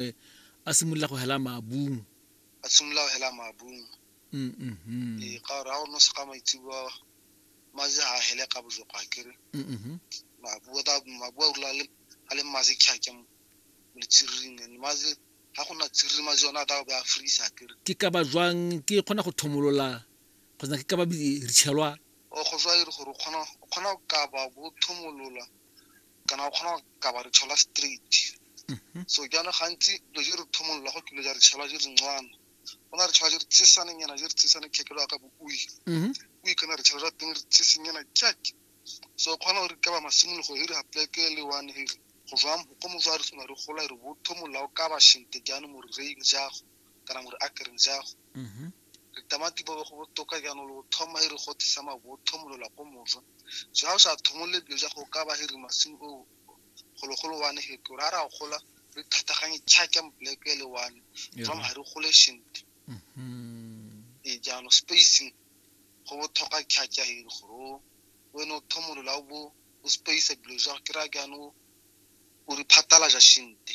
gagwe a simolola go hela maabung a simolola go hela maabung mm, mm, mm. ee ka gore ga o nosa ka maitsebo maje ga a hele ka bojoko ga kere mabua a rula a le mmaje kgake mo letsiriring and maje ga go na tsiriri maje yone a tla be a freeza kere ke ka ba jwang ke kgona go thomolola kgotsa ke ka ba re tshelwa o go jwa e gore o kgona go kaba bo thomolola kana o kgona go ka ba re tshola straight mhm. so jaana gantsi lo je re thomolola go kile ja re tshola je re ntswana go na re tshola je re tsesane nyana je re tsesane khekelo ya ka bo ui mhm. ui kana re tshola teng re tsese nyana jack so o kgona gore ka ba masimologo e re gapleke le one e re go jwang go mo jwa re sona re gola e re bo thomolola o ka ba shente jaanong mo re reing jago kana mo re akereng jago mhm. Litamati bobe go botoka jaanong le go thoma hiri gote sa maboo thomolola ko moswa. So ha o sa thomolole dilo ja go ka ba hiri masimo o gologolo wane he gore ha ra gola re thataganye chaka mpleke ele wane from ha re gole shente e jaanong spacing go botlhokwa chaka hiri gore o wene o thomolola o bo o space dilo ja ke ra jaanong o re phatalaja shente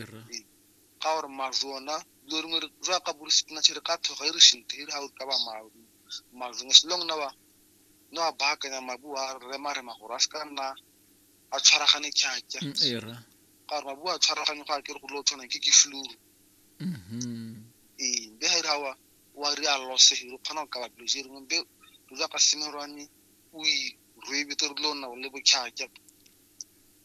Era. Ee. ga gore mazwi ona dilo dingwe re- jwa ka bo re sepinatšhe re ka thoga e re shinte e re ga o ka ba ma- mazwi as long na wa na wa baakanya mabu a remarema gore a se ka nna a tshwaragane kjatša Mm, Era. ka gore mabu a tshwaragane go a kere go dilo tshwanang ke ke fluru Mhm. ee be ga e re ga wa wa re a lose re kgona go kaba dilo tse dingwe be dilo jwa ka semerwane o e rwebete re dilo nna le botšhatša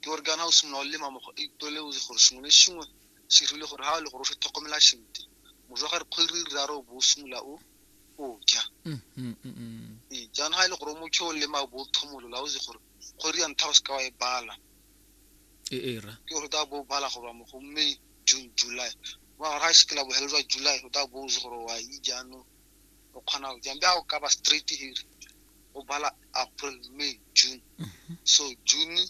ke gore kana o simolola o lema mokgwa itole o gore sengwe le sengwe se rile gore ha le gore o se tlhokomela sentle mojwa ga re kgwedi re raro bo simolola o o ja mm, mm, mm, ee jaanong ga e le gore o motho o lema bo thomolola o se gore kgwedi ya ntlha o se ka wa e bala e era ke gore ta bo bala go ba mo go mme june july wa ga se ke la bohelo jwa july o ta bo o se gore wa e jaanong o kgona go jang bja o ka ba straight here o bala april may june mhm. so june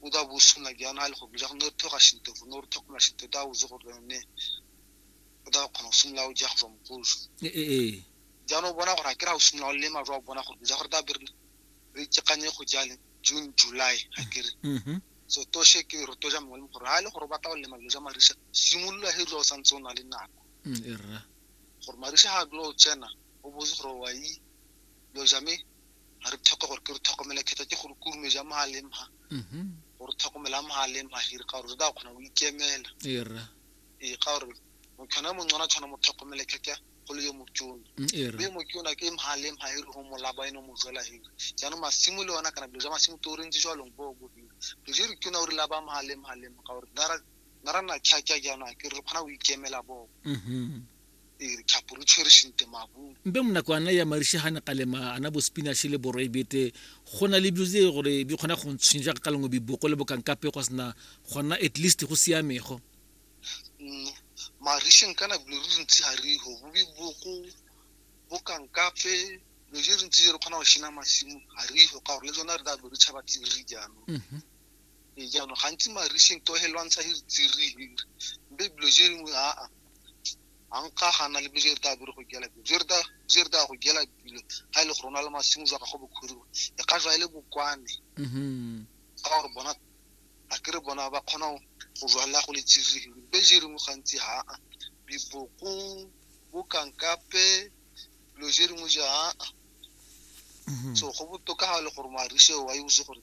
o da bo suna jana a le go bila go ne thoga shinto go ne thoga ma shinto da o ze go ne o da kgona go sumla o ja go tswa mokoso e e e jana o bona gore a kira o sumla o le ma jwa bona gore ja gore da bere re tsekanye go jale june july a kere mhm. so to she ke re to ja mongwe gore ha le gore ba tla o le ma jo ja marisa simolola he jo o santse o na le nako mm, e rra gore Marisha ha dula o tsena o botse gore wa yi lo ja me ha re tlhoka gore ke re tlhokomela khetsa ke gore kurume ja mo ha leng ha mhm. gore tlhokomela mo ha leng ha hiri ka gore re da khona o ikemela era e ka gore mo khona mo ngwana tshwana mo tlhokomela khetsa go le yo mo tsona mm, era me mo tsona ke mo ha leng ha hiri ho mo laba eno mo jwela hiri jana masimo le ona kana bjo ja masimo to re ntse jwa longbo go hiri re re tsona o re laba mo ha leng ha leng ka gore na ra na tlhaja jaanong ke re kgona go ikemela boko mm-hmm. ee, re tlhapo re tshwere sente mabung mpe mo nako ana ya marishe ga ne kalema ana bo spinashe le boroi bete go na le bilo tse gore di kgona go ntshwenya jaaka ka lengwe biboko le bokankape go sena gona at least go siamego mm, marisheng kana bilo re ntsi ga re go bo biboko bokankape lo je re ntsi je re kgona go shena masimo ga re go ka gore le tsona re ka bo re tšhaba tse re jaanong mm-hmm. ee jaanong gantsi mariseng to he lwantsha hiri tsiri hiri mbe bilo je dingwe aa a nka gana le bojere ta bere go gela bilo jere ta jere ta go gela bilo ga ile e go rona le masimo jwa gago bokhuriwa e ka jwa ile e bokwane mhm ga gore bona a kere bona ba kgona go jwala go le tsiri hiri mbe je dingwe gantsi ha a biboko bokankape bilo je dingwe ja aa mhm. so go botoka ga e le gore marise wa e botse gore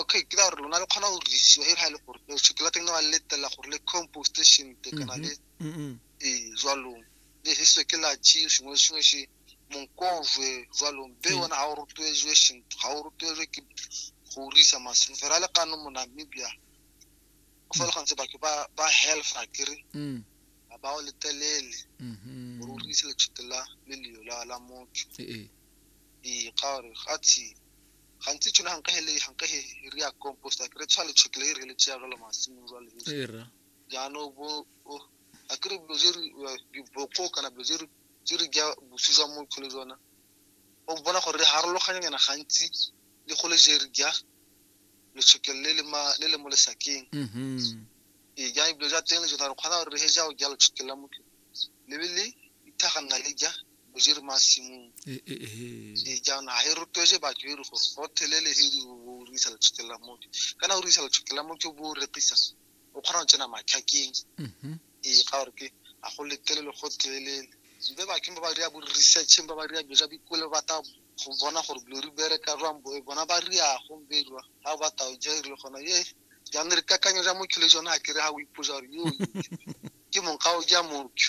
okay ke ra gore lona le kgona go dirisiwa e le ga e le gore tshwete la teng ne wa letela gore le compost shente kana le ee jwalong le heso ke la chi sengwe le sengwe se monkojwe jwalong be ona ga o rotloetswe shente ga o rotloetswe ke go risa masimo fela le kano mo namibia o fa le gantse batho ba ba healtha kere ga ba o letelele gore o rise letshwete la leleo la motho ee ka gore ga tshimo gantsi tshone ganka he le ganka he re ya compost ke re tshwa le tshekile e re le tsaya jalo masimo jwa le e ra jaanong bo a ke re dilo je re diboko kana dilo je re je re ja bosi jwa mo tlhole jona o bona gore re harologanya nyana gantsi le go le je re ja le tshekile le le ma le le mo lesakeng mhm e ja dilo ja teng le jona re kgona gore re he ja o ja le tshekile mo le le ithaganna le ja o jere masimong ee jaanong ga e rotloetse batho e re gore go thelele he di o risa letshotlela motho kana o risa letshotlela motho bo o rekisa o kgona go tsena matlhakeng mm-hmm. ee ga gore ke a go letelele go thelelele mbe bathong ba ba ria bo researcheng ba ba ria dilo tsa bikole ba ta go bona gore dilo re bereka jwang bo bona ba riago mbe jwa ga ba tao ja e rile gona ye jaanong re kakanyo ja motho le jone a kere ga o ipoja gore yo ke mong ga o ja motho